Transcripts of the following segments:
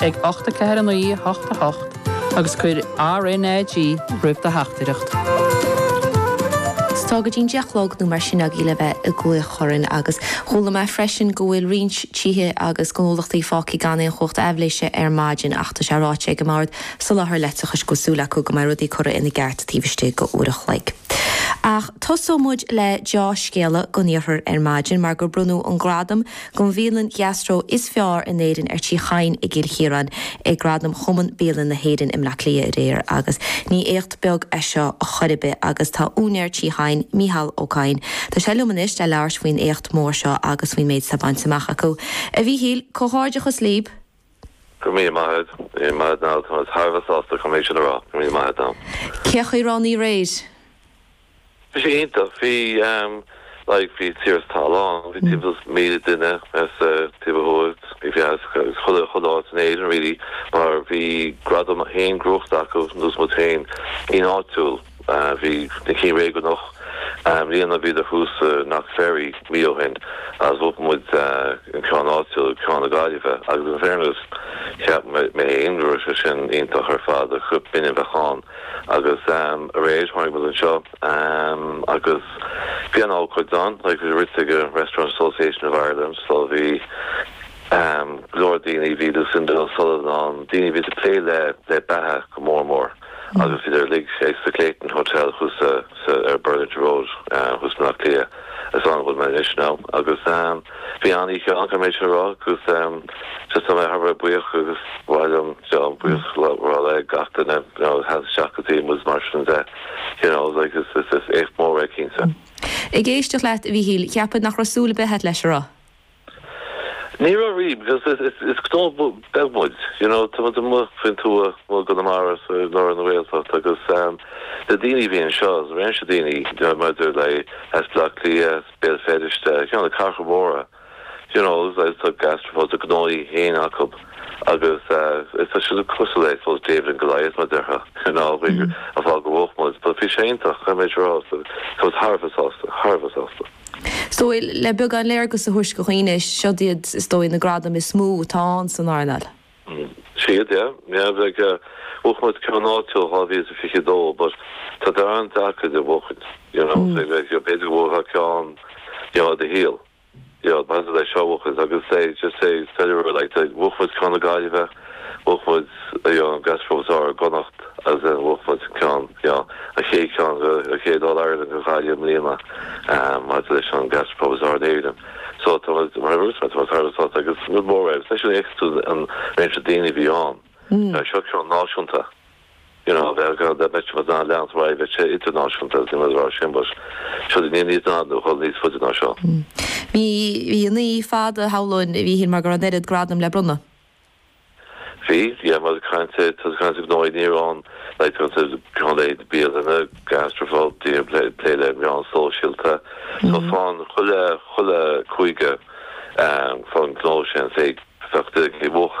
ag ocht a ceathair a naoi a hocht a hocht agus cuir RNAG roimh do theachtaireacht. Is tá go dtí an deich a chlog nó mar sin agaí le bheith ag glaoch orainn agus chuala mé freisin go bhfuil roinnt tithe agus gnólachtaí fágtha gan aon chumhacht aibhléise ar maidin ach tá sé ráite ag an mBord Soláthair Leictreachais go bhfuil súil acu go mbeidh rudaí curtha ina gceart taobh istigh d'uair a chloig. Ach tosóidh muid le deá-scéala don iarthar ar maidin mar gur bronnadh an gradam don Bhialann Gastro is Fearr in Éirinn ar Tí Chadhain i gCill Chiaráin ag Gradaim Chumann Bialann na hÉireann i mBleá Cliath aréir agus ní éacht beag é seo chor ar bith agus tá úinéir Tí Chadhain, Mícheál Ó Cadhain, tá sé liom anois le labhairt faoin éacht mór seo agus faoin méid atá bainte amach acu. A Mhíchíl, comhghairdeachas libh! Go míle maith agat. Go míle maith agat, Niall. Táimid thar a bheith sásta caithfidh mé sin a rá go míle maith agat. Cén chaoi a raibh an oíche aréir? Bhí sé iontach. Bhí ehm like bhí tír sa tollán. Bhí timpeall is míle duine as taobh ó thuaidh bhí bhí as chuile chuile áit in Éirinn really mar bhí gradam fhéin gnóite acu nós muid féin in áitiúil. Bhí na cinn réigiúnach i mbliana, bhíodar thuas i Knock Ferry mí ó shin agus bhuaigh muid an ceann áitiúil, ceann na Gaillimhe agus in fairness cheap mé fhéin go raibh sé sin iontach ar fad, cheap muid b'in é a bheadh ann agus aréir tháinig muid anseo agus bhí an ócáid ann, like bhí rite ag an Restaurant Association of Ireland so bhí go leor daoine, bhí Lucinda O'Sullivan ann, daoine a bhíos ag plé le beatha go mór mór. Agus idir uilig, is sa Clayton Hotel thuas ar Burlington Road thuas i mBleá Cliath, is ann a bhfuil mé anois now. Agus bhí an-oíche ann, caithfidh mé sin a rá, agus just tá mé thar a bheith buíoch agus ba mhaith liom, you know, buíochas a rá le gach duine, you know, a sheas isteach go dtí muid mar sin de, you know, like is éacht mór é, cinnte. Ag éisteacht leat, a Mhíchíl, cheapfá nach raibh súil a' bith a'at leis, an raibh. Ní raibh really, because is gnó beag muid, you know, tá muid amuigh faoin tuath, amuigh i gConamara, so i lár na Gaeltacht agus na daoine a bhí anseo, réimse daoine, you know, maidir le as Bleá Cliath, as Béal Feirste, you know, na cathracha móra, you know, agus tá gastropubs, a ngnóthaí féin acu. Agus tá sé cosúil le, I suppose, David and Goliath, mar a déarfá, you know, bhí a bhfáth go mbuafadh muid, but bhí sé iontach, caithfidh mé rá, so I was thar a bheith sásta, thar a bheith sásta. So, le beagán léargas a thabhairt do dhaoine, siod iad, is dóigh, na gradaim is mó atá ann san earnáil. Siad, yeah, yeah, like, bhuaigh muid ceann áitiúil 2022, but tá darn deacair iad a bhuachaint, you know, so, like, b'fhéidir go mbuafá ceann, you know, i do shaol. Bhíodh Matt in ann a chosaint agus say, just say, tell her what I like, bhuaigh muid ceann na Gaillimhe, bhuaigh muid an gastropub is fearr i gConnacht agus then bhuaigh muid ceann, you know, an chéad ceann go, an chéad All-Ireland go Gaillimh i mbliana maidir leis an gastropub is fearr in Éirinn. So tá muid, mar Irish man, tá muid thar a bheith sásta agus is rud mór é agus leis an éagsúil an réimse daoine a bhí ann, seo ceann náisiúnta. Ní raibh ar gá le beirt mar Donald Leon sa bhaile bheith sé idirnáisiúnta agus imeacht ar ár Chambers. Seo duine níos daingne nó chomh níos faide ná sin. Bhí an oíche fada shamhlóinn a Mhíchíl mar go raibh an oiread gradam le bronnadh. Bhí. Tá muid ag caint, tá tú ag caint ar ghnóthaí ní hamháin lei tusa gan leithéid bialainne, gastropub, daoine ag plé le meáin sóisialta. So fán chuile chuile chúige fán ngnó sin, féach, bheadh duine ag cloí mhoch.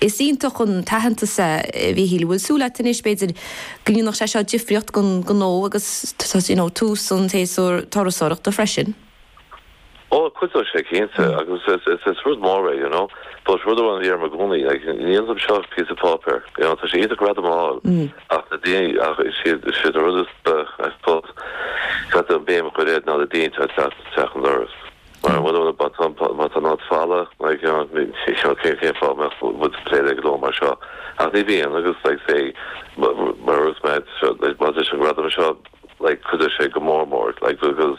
Is iontach an t-aitheantas é, a Mhíchíl. Bhfuil súil agat anois, b'fhéidir, go ndéanfadh sé seo difríocht don ghnó agus you know tús an tséasúir turasóireachta freisin? Ó, cuideoidh sé, cinnte, agus is rud mór é, you know. But rud amháin a dhéarfainn i gcónaí, like, ní ionann seo is píosa páipéir, you know. Tá sé iontach gradam a fháil ach na daoine, ach siad, siad an rud is, I suppose, caithfidh tú an béim a chur air ná na daoine atá ag teacht isteach an doras. Mar bharr ar an bpatán, má tá nod fada, mar gheall, ní shílfeá cén fáth a mbeadh muid ag plé le gnó mar seo. Ach ní bhíonn, agus, like, say, mar a dúirt mé, maidir leis an gradam seo, like, cuideoidh sé go mór mór, like, agus,